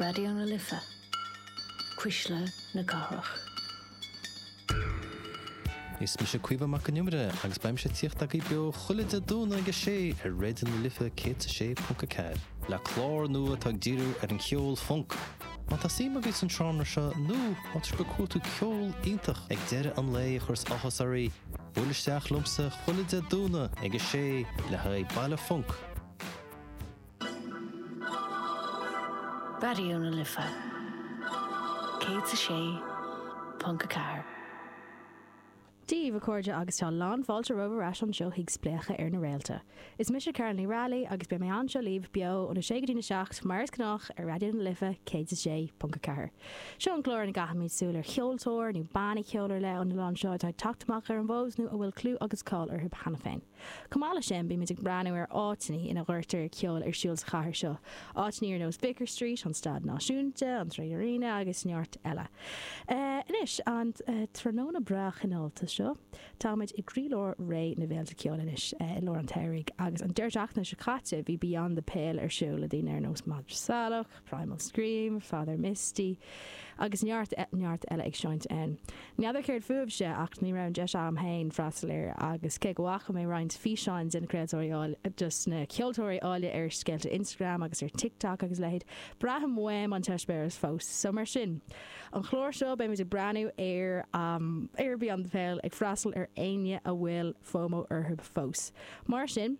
Raidió na Life, Cuisle na Cathrach. Is mise Caoimhe Mac an Iomaire agus beidh mise tíocht agaí beo chuile Dé Domhnaigh ag a sé ar Raidió na Life 106.4. le clár nua atá ag díriú ar an cheol funk. Má tá suim agaibh san seánra seo nó má tá sibh ag cuartú ceol iontach ag deireadh an lae a chuireas áthas oraibh, buail isteach liomsa chuile Dé Domhnaigh ag a sé le haghaidh Baile Funk! Raidió na Life 106.4. Dia dhaoibh a chairde agus tá a lán fáilte romhaibh ar ais anseo chuig Spléachadh ar na Réalta. Is mise Carol Ní Raghallaigh agus beidh mé anseo libh beo óna sé go dtí a seacht mar is gnách ar Raidió na Life 106.4. Seo an clár ina gcaithimid súil ar cheoltóir nó banna ceoil ar leith ón oileán seo atá ag teacht amach ar an bhfód nó a bhfuil clú agus cáil orthu cheana féin. Chomh maith leis sin bímid ag breathnú ar áiteannaí ina gcuirtear ceol ar siúl sa chathair seo, áiteannaí ar nós Vicar Street, an Staid Náisiúnta, an 3Arena agus neart eile. Anois, an tráthnóna breá cineálta seo, táimid i gcroílár ré na bhféilte ceoil anois i lár an tsamhraidh agus an deireadh seachtaine seo caite bhí Beyond the Pale ar siúl le daoine ar nós Madra Salach, Primal Scream, Father John Misty agus neart, neart eile ag seinnt ann. N'fheadar céard fúibhse ach ní raibh an deis agam féin freastal air agus cé go bhfaca mé roinnt físeáin de na craoltóirí áille, de na ceoltóirí áille ar scéalta Instagram agus ar TikTok agus a leithéid, braithim uaim an t-eispéireas fós. So mar sin, an chlár seo beimid ag breathnú ar, am, ar Beyond The Pale ag freastal ar éinne a bhfuil fomo orthu fós. Mar sin.